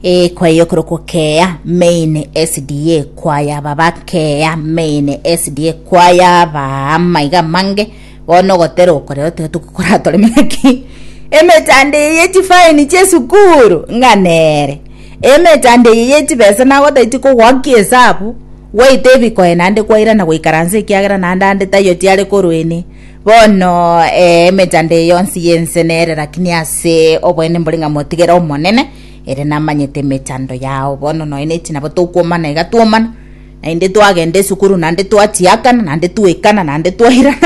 Eh, kwaya yokorokwo keya main sda kwaya baba keya main sda kwaya ba maiga mange bono ogotera okorero tiga tokokoratore maki emechando eye yechifaini chiesukuru ng'a nere emechando eye yechibesa nagotaiti kogoaki esabu gwaita ebikoe naende kwairana goikaransa ekiagera naende ande taiyo tiare korwa ene Bono, ee, emechando eye yonsi y'ense nere, lakini ase oboene mbore ng'a motigere Omonene, ere namanyete emechando yao. Bono nonya ne chinabo tokwomana iga twomana, naende twagenda esukuru, naende twachiakana, naende twaikana, naende twairana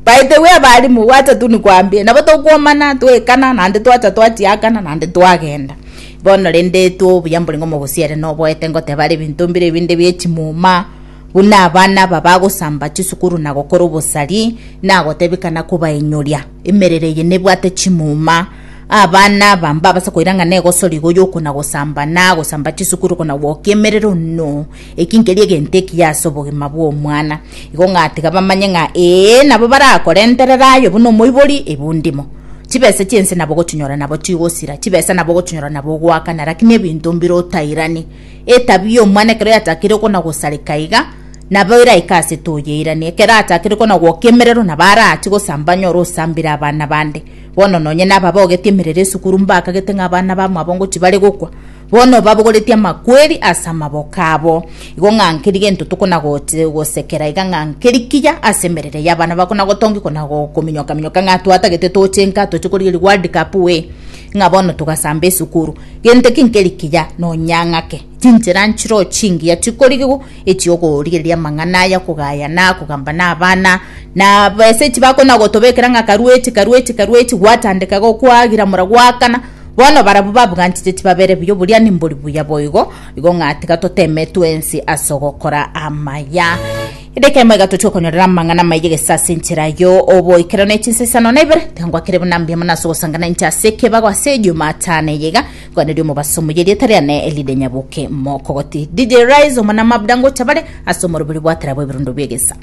By the way abalimu, gwacha tu nikwambie, nabo tokwomana, twaikana, naende twacha twachiakana, naende twagenda. Bono rende etwo obuya mbore ng'a omogusia ere noboete ngoteba are ebinto mbire ebinde bie chimuma, buna abana aba bagosamba chisukuru na gokora obosari, nagotebekana kobainyoria. Emerero eye nebwate chimuma. Abana aba mbabase koirang'ana egosori igo y'okona gosamba na gosamba chisukuru kona gwokia emerero no. Eki nkeria egento ekiya ase obogima bw'omwana. Igo ng'a tiga bamanye ng'a ee nabo barakore enterera aye buna omoibori ebundimo. Chibesa chi'ense nabo ogochinyora nabo chigosira, chibesa nabo ogochinyora nabo ogoakana, rakini ebinto mbire otairani. Etabia y'omwana ekero yatakire kona-gosareka iga, nabo eraike ase toyeirani. Ekero atakire kona-gwoka emerero, nabo araachie gosamba anyore osambire abana bande. Bono nonye nababogetie emerero esukuru, mbakagete ng'a abana bamwabo ngo tibare gokwa, bono obabogoretie amakweri ase amaboko abo. Igo ng'a nkeri gento tokona-gote- gosekera iga ng'a nkeri kiya ase emerero y'abana bakona-gotongia kona-go- kominyoka-minyoka ng'a twatagete tochenka toche korigereria World Cup we, ng'a bono togasamba esukuru. Gento ki nkeri kiya nonya ng'ake, chinchera nchiroo chingiya chikorigigwa echi'okorigereria amang'ana aya, okogayana, kogamba nabana, na besa echi bakona gotobekera ng'a karuechi, karuechi, karuechi, gwatandeka igo kwagira mura gwakana, bono barabwo babuganchete tibabere buya, oboria nimbori buya boigo, igo ng'a tiga toteme twensi as'ogokora amaya. Edaika emo iga tochia okonyorera amang'ana amaiga gese ase enchera yo oboikeranu ya chinsa isano na ibere. Tangwa kere buna mbiya mono ase ogosangana inche ase ekebago ase Ejumatano eye iga, kwaneri omobaso muya erieta riane rire nyaboke mokogoti. DJ Rise omwana mabda ngocha bare ase omoroberi bwa tara bw'ebirundo bi'egesa.